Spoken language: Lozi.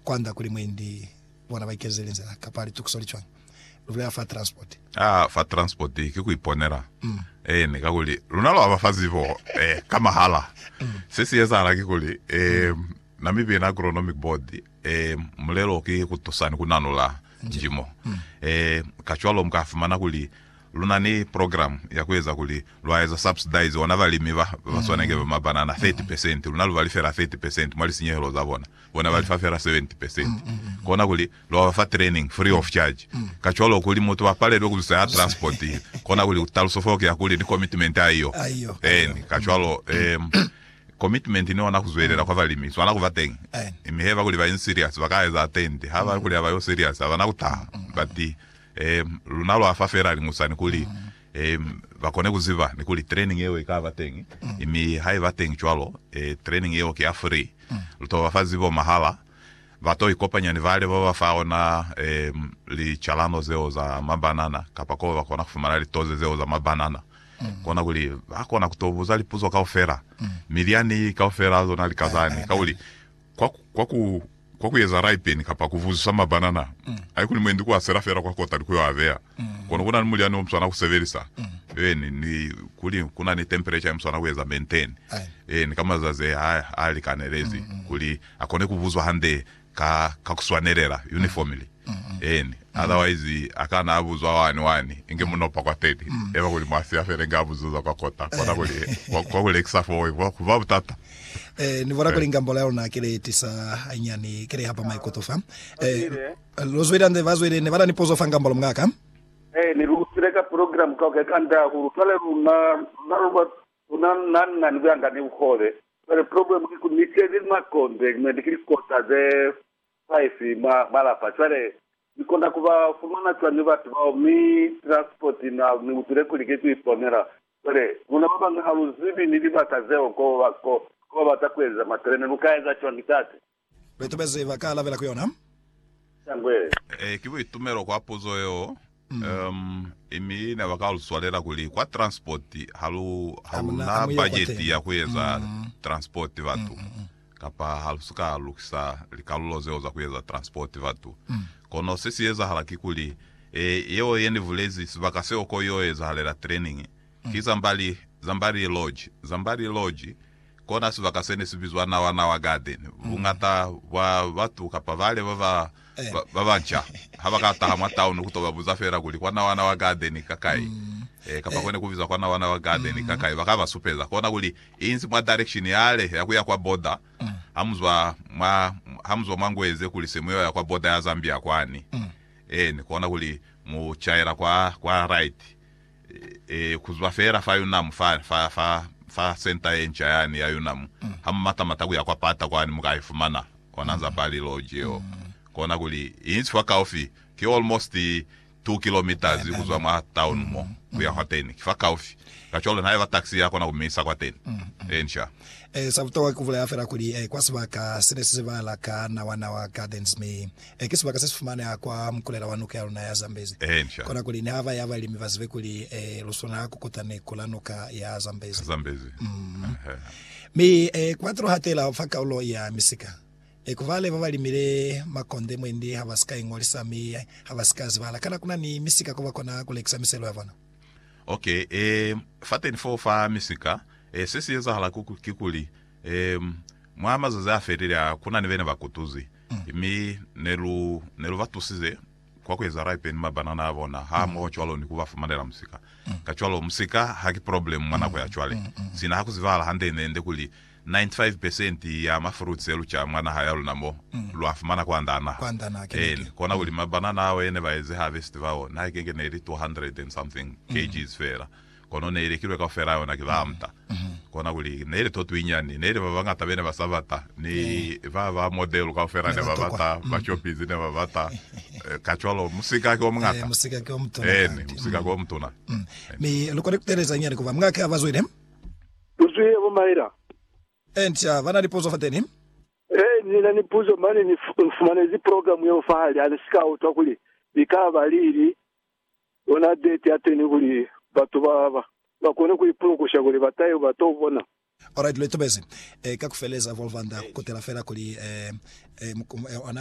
Kwand'a kuli mwendi bona ba ikezele nzila kapa litukiso li cwañi, lu bulela fa transport. Aa, fa transport ki ku iponela. Eeni, kakuli luna lwa ba fa zibo ka mahala. Se si ezahala ki kuli, Namibian Agronomic Board, mulelo ki ku tusa ni ku nanula njimo. Kacwalo mu ka fumana kuli lu na ni program ya ku eza kuli lwa eza subsidize ona balimi ba ba swanike ba mabanana 30 percent, luna lu ba lifela 30 percent mwa lisinyehelo za bona. bona ba lifa fela 70 percent, kona kuli lwa ba fa training free of charge. Kacwalo, kuli mutu a palelwe ku zusa ya transport, kona kuli taluso fo ki ya kuli ni commitment ya iyo. Eeni, kacwalo, um, commitment ni ona ku zwelela kwa balimi ku swana ku ba teñi. Mi haiba kuli ba inzi serious, ba ka eza attend. Ha ba kuli ha ba yo serious, ha ba na ku taha. But, um, luna lwa fa fela liñusani kuli eh, ba kone ku ziba ni kuli training yeo i ka ba teñi, mm. mi ha i ba teñi cwalo, eh, training yeo ki ya free, mm. lu to ba fa zibo mahala, ba to ikopanya ni bale ba ba fa ona eh, licalano zeo za mabanana, kapa ko ba kona ku fumana litoze zeo za mabanana, mm. kona kuli ba kona ku to buza lipuzo kaufela, mm. milyani kaufela zona likazani, ka kuli kwa, kwa ku, kwa ku eza raipen kapa ku vuzisa mabanana, haikuli mwendi ku a sela fela kwa kota ni ku yo a beya. Kono kuna ni mulyani o mu swana ku sebelisa, eeni, ni kuli kuna ni temperature ya mu swana ku eza maintain, eeni, ka mazazi a, a likanelezi, kuli a kone ku buzwa hande ka, ka ku swanelela, uniformly. Eeni. Otherwise, a kana a buzwa wani, wani, inge mu nopa kwa teni, eba kuli mwa siya fela inge a buzuza kwa kota, kona kuli kwa, kwa ku lekisa foo, kwa ku ba butata. Eh, ni bona kuli ngambola ya luna kile tisa hanyani, kile hapa maikuto fa. Eh, lo zwile nze ba zwile ne bana ni pozo fa ngambola mngaka. Eh, ni lu tile ka program ka ke kanda ku lutwale luna na luna luna na na ni kuyanda ni ukole. Kale problem ki ku ni tele ni makonde, ni kili kota ze five ma malapa. Kale Ni kona ku ba fumana cwañi batu bao? Mi Transport na ni utile kuli ki ku iponela. Cwale, luna ba bañwi ha lu zibi ni libaka zeo ko ba, ko, ko ba bata ku eza matelene. Lu ka eza cwañi, Tate? Baitobezi ba ka alabela ku yona. Shangwe. Ee, ki buitumelo kwa puzo yeo. Um, mi ne ba ka lu swalela kuli, kwa Transport, ha lu, ha lu na bajeti ya ku eza Transport batu. Kapa ha lu si ka lukisa likalulo zeo za ku eza transport batu. Kono se si ezahala kikuli, e, yeo ye ni bulezi, sibaka seo ko y'o ezahalela training, ki Zambali, Zambali Lodge. Zambali Lodge, kona sibaka se ne si bizwa Nawa Nawa Garden. Buñata bwa batu kapa bale ba ba ba ba banca ha ba ka taha mwa taunu ku to ba buza fela kuli kwa Nawana wa Gadeni ka kai, eh, kapa kone ku bizwa kwa Nawana wa Gadeni ka kai, ba ka ba supeza kona kuli inzi mwa direction yale ya ku ya kwa border ha mu zwa mwa, ha mu zwa mwa Ngweze kuli se mu yo ya kwa border ya Zambia kwani, eeni, kona kuli mu caela kwa, kwa right. ku zwa fela fa Yunamu fani, fa, fa, fa senta ye nca yani ya Yunamu, ha mu mata-mata ku ya kwa pata kwani mu ka i fumana, ona za Barley Lodge yeo. Kona kuli, i si fakaufi, ki almost two kilometres ku zwa mwa town mo, ku ya hwateni. Ki fakaufi. Kacwalo nihaiba taxi ya kona ku mi isa kwateni. Inca. Sa butokwa ki ku bulaya fela kuli, kwa sibaka sene se zibahala ka Nawa Nawa Gardens, mi Ee, ki sibaka se si fumaneha kwa mukulela wa nuka ya luna ya Zambezi. Kona kuli ni haba ya balimi ba zibe kuli ee, lu swana ku kuta ni kula nuka ya Zambezi. Mm. Mi ee, ku batile hatela fa kaulo ya misika. Ee, ku bale ba ba limile makonde mwendi ha ba si ka ingolisa mi ha ba si ka zibala. Kana kuna ni misika ko ba kona ku lekisa miselo ya bona? Ok, ee, fateni foo fa misika, ee, se si ezahala kikuli, ee, mwa mazazi a felile a, kuna ni bena bakutuzi. Mi ne lu ne lu ba tusize kwa ku eza ripe ni mabanana a bona hamoho cwalo ni ku ba fumanela musika. Kacwalo, musika ha ki problemu mwa nako ya cwale. Sina ha ku zibahala hande-nde kuli 95 pesenti ya ma fruits e lu ca mwa naha ya luna mo, lu a fumana kwanda a naha. Eeni, kona kuli mabanana ao e ne ba ezi harvest bao, naha ikenge ne li 200 and something kgs feela. kono ne i lekilwe kaufela yona ki baamta. Kona kuli, ne ili to twinyani, ne ili babañata bene ba sa bata, mi ba ba model kaufela ne ba bata, ba shoppizi ne ba bata, kacwalo musika ki omuñata. Musika ki omutuna. Eeni, musika ki omutuna. Mi lu kona kuteeleza nyani kuba mwa ki abazwile? Lu zwile bo Myra. Encia, ba na ni puzo fateni? Ee, ni na ni puzo, mane ni fumanezi program yeo fahali, hane si ka utwa kuli ikaba li ili. Ona date yateni kuli batu ba ba ba kone ku ipulukusha kuli ba tahe ba to bona. Alright, lu itobezi. Ka ku feleza, Volva nda ku kutela fela kuli, ee, ee, ona